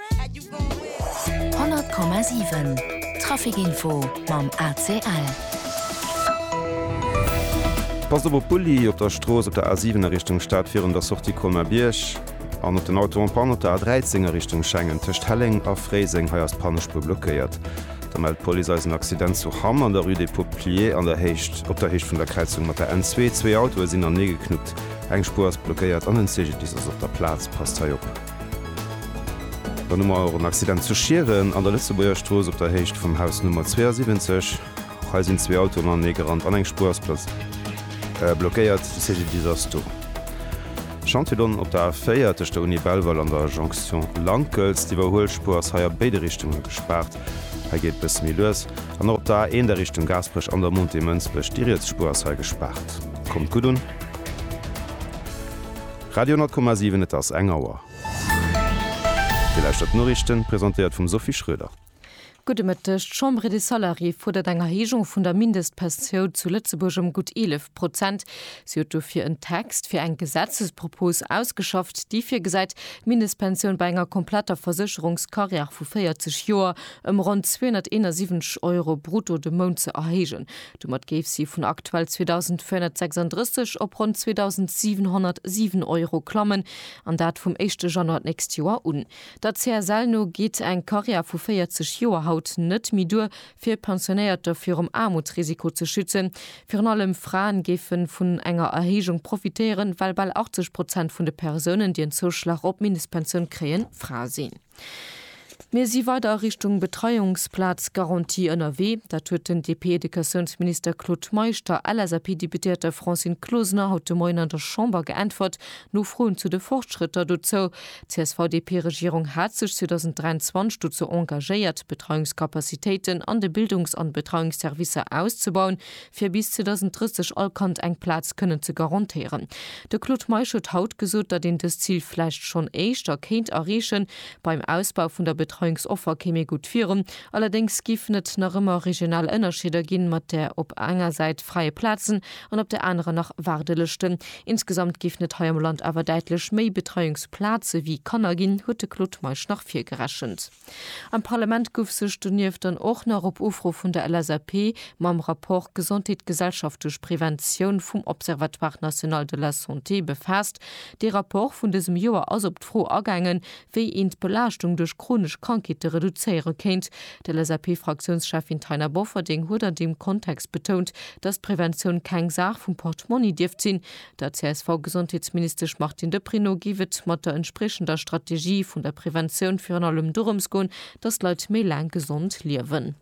100,7 Trafic info mam ACL. Passt op op Bulli op der Strooss op der A7 a Richtung Stad virun der Sortie Colmer-Bierg an op den Auto en panne op der A13 a Richtung Schengen tëscht Helleng a Fréiseng. Hei ass d'Pannespuer blockéiert. Da mellt d'Police eis en Accident zu Hamm an der Rue des Peupliers an der Héicht op der Héicht vun der Kräizung mat der N2. Zwee Autoe sinn aneegeknuppt, eng Spuer ass blockéiert an en CGDIS ass op der Plaz. Passt hei op. Dann hu mer och en Accident zu Schieren an der Lëtzebuerger Strooss op der Héicht vum Haus Nummer 72. Hei sinn zwee Autoen anenee gerannt an eng Spuer ass blockéiert. De CGDIS ass do. Chantier Donn op der A4 tëscht der Uni Belval an der Jonction Lankels. D'Iwwerhuelspuer ass hei a béide Richtunge gespaart. Hei geet et bësse méi lues. An och op der A1 a Richtung Gaasperech an der Montée Mënsbech. Déi riets Spuer ass hei gespaart. Kommt gutt un. Radio 10,7 Et ass eng Auer. Dir lauschtert d'Noriichten, presentéiert vum Sophie Schroeder. Gudde Mëtteg. D'Chambre des Salariés fuerdert eng Erhéijung vun der Mindestpensioun zu Lëtzebuerg ëm gutt 11 Prozent. Si huet dofir en Text fir eng Gesetzespropos ausgeschafft, déi virgesäit, d'Mindestpensioun bei enger kompletter Versécherungskarriär vu 40 Joer ëm ronn 271 Euro brutto de Mount ze erhéijen. Domat géif si vun aktuell 2.436 op ronn 2.707 Euro klammen, an dat vum éischte Januar d'nächst Joer un. Der CSL no geet eng Karriär vu 40 Joer haut net méi duer, fir Pensionéierter virum Aarmutsrisiko ze schützen. Virun allem Fraen géife vun enger Erhéijung profitéieren, well bal 80 Prozent vun de Persounen, déi en Zouschlag op d'Mindestpensioun kréien, Frae sinn. Mir si weider a Richtung Betreiungsplazgarantie ënnerwee. Dat huet den DP-Educatiounsminister Claude Meisch der LSAP-Deputéierter Francine Closener haut de Moien an der Chamber geäntwert, no Froen zu de Fortschrëtter dozou. D'CSV-DP-Regierung hat sech 2023 dozou engagéiert, d'Betreiungscapacitéiten an de Bildungs an Betreiungsservicer auszebauen, fir bis 2030 all Kand eng Plaz kënnen ze garantéieren. De Claude Meisch huet haut gesot, datt een dëst Zil vläicht schonn éischter kéint erreechen. Beim Ausbau vun der Betreiungsoffer kéim ee gutt virun, allerdéngs géifen et nach ëmmer regional Ënnerscheeder ginn, mat där op enger Säit freie Plazen an op der anerer nach Waardelëschten. Insgesamt géifen et hei am Land awer däitlech méi Betreiungsplaze wéi Kanner ginn, huet de Claude Meisch nach virgerechent. Am Parlament guff sech donieft dann och nach op Ufro vun der LSAP mam Rapport Gesondheet, Gesellschaft duerch Preventioun vum Observatoire national de la santé befaasst. Dee Rapport vun dësem Joer ass op d'Fro agaangen, wéi een d'Belaaschtung duerch chronesch Krankheete reduzéiere kéint. D'LSAP-Fraktiounscheffin Taina Bofferding huet an deem Kontext betount, dass d'Preventioun keng Saach vum Portmonni dierft sinn, Der CSV-Gesondheetsministesch Martine Deprez no géif et mat der entspriechender Strategie vun der Preventioun virun allem dorëms goen, datt d'Leit méi laang gesond liewen.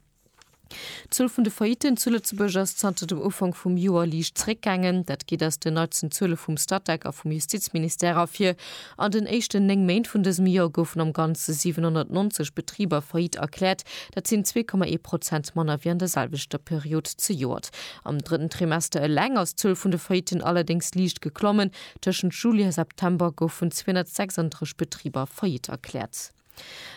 D'Zuel vun de Faillitten zu Lëtzebuerg ass zanter dem Ufank vum Joer liicht zeréckgaangen. Dat geet aus den neitsten Zuele vum Statec a vum Justizministère ervir. An den éischten néng Méint vun dësem Joer goufen am Ganze 790 Betriber faillite erkläert. Dat sinn zwee Komma ee Prozent manner wéi an der selwechter Period zejoert. Am drëtten Trimester eleng ass d'Zuel vun de Faillitten allerdéngs liicht geklommen, tëschent Juli a September goufen 236 Betriber faillite erkläert.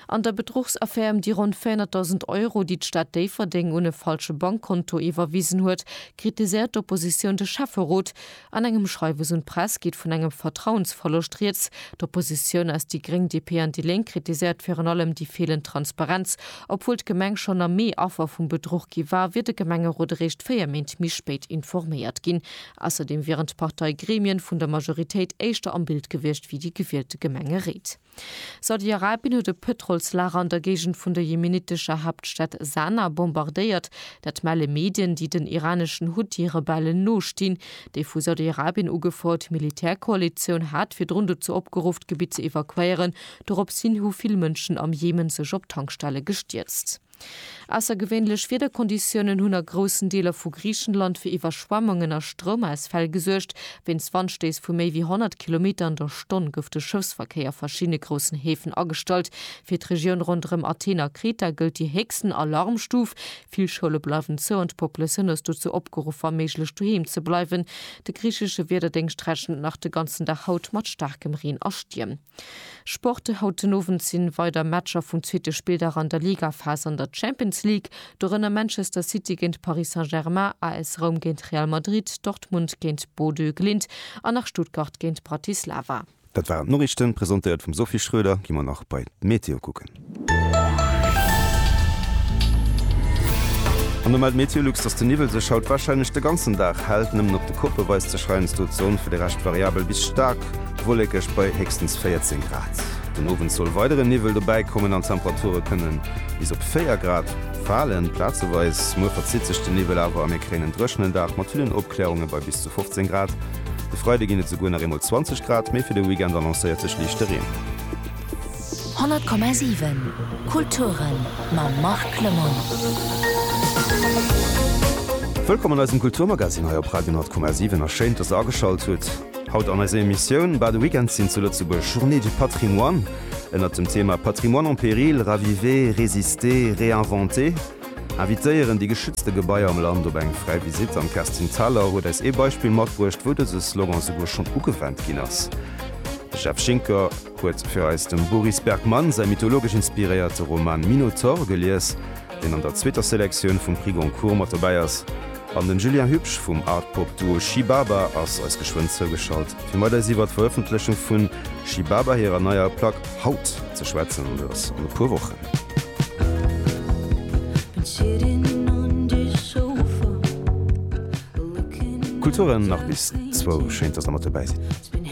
An der Bedruchsaffär ëm déi ronn 400.000 Euro, déi d'Stad Déifferdeng un e falsche Bankkonto iwwerwisen huet, kritiséiert d'Oppositioun de Schäfferot, An engem Schreiwes un d'Press geet vun engem Vertrauensverloscht rieds. D'Oppositioun aus déi Gréng, DP an déi Lénk kritiséiert virun allem déi feelend Transparenz. Obwuel d'Gemeng schonn am Mee Affer vum Bedruch gi war, wier de Gemengerot eréischt 4 Méint méi spéit informéiert ginn. Ausserdeem wieren d'Parteigremien vun der Majoritéit éischter am Bild gewiescht wéi déi gewielte Gemengeréit. Saudi-Arabien huet e Pëtrolslager an der Géigend vun der jemenitescher Haaptstad Sana bombardéiert. Dat melle Medien, déi den iraneschen Huthi-Rebellen nostinn. Déi vu Saudi-Arabien ugefouert Militärkoalitioun hat virdrun dozou opgeruff, d'Gebitt ze evakuéieren. Doropshin hu vill Mënschen am Jemen sech op Tankstelle gestierzt. Aussergewéinlech Wiederkonditiounen hunn a groussen Deeler vu Griichenland fir Iwwerschwemmungen a Stroumausfäll gesuergt. Wéinst Wandstéiss vu méi wéi 100 Kilometer an der Stonn gouf de Schëffsverkéier a verschiddene groussen Häfen agestallt. Fir d'Regioun ronderëm Athen a Kreta gëllt déi héchsten Alarmstuf. Vill Schoule bleiwen zou an d'Populatioun ass dozou opgeruff, wa méiglech doheem ze bleiwen. De griichesche Wiederdéngscht rechent nach de ganzen Dag haut mat staarkem Reen a Stierm. Sport, Haut den Owend sinn weider Matcher vum zweete Spilldag an der Ligaphas an der Champions League, dorënner Manchester City géint Paris Saint-Germain, AS Roum géint Real Madrid, Dortmund géint Bodø Glimt an nach Stuttgart géint Bratislava. Dat waren d'Noriichten, presentéiert vum Sophie Schröder. Gi mer nach bei d'Meteo kucken. An da mellt MeteoLux, dass de Niwwel sech haut warscheinlech de ganzen Dag hält. Nëmmen op de Koppe weist sech heiansdo d'Sonn, fir de Rescht variabel bis staark wollekeg bei héchstens 14 Grad. Den Owend soll weidere Niwwel dobäikommen an d'Temperature kënne bis op 4 Grad falen, plazeweis. Muer verzitt sech de Niwwel awer a mir kréien en dréchenen Dag mat villen Opklärunge bei bis zu 15 Grad. De Freide ginn et souguer nach eemol 20 Grad, mee fir de Weekend annoncéiert sech liichte Reen. 100,7 Kulturen mam Marc Lemoine. Wëllkomm an eisem Kulturmagazine hei op Radio 10,7 a schéin, dass der ageschalt hutt. Haut an eiser Emissioun, Bal de Weekend sinn zu Lëtzebuerg Journée du Patrimoine ënnert dem Thema Patrimoine en péril, raviver, résister, réinventer. Invitéieren déi geschützte Gebaier am Land op eng fräi Visitt an d'Kerstin Thalau huet eis ee Beispill matbruecht, wou dëse Slogan souguer schonn ugewennt ginn ass. De Jeff Schinker. huet fir eis dem Boris Bergmann säi mythologesch inspiréierte Roman Minotaur gelies, deen an der zweeter Selektioun vum Prix Goncourt mat dobäi ass, an den Julien Hübsch vum Art-Pop-Duo Shibaba ass eis geschwënn zougeschalt, fir mat eis iwwer d'Verëffentlechung vu Shibaba hirer neier Plack Haut ze schwätzen, dës an e puer Wochen. Kulturen nach bis zwou, schéin dass der mat dobäi sidd.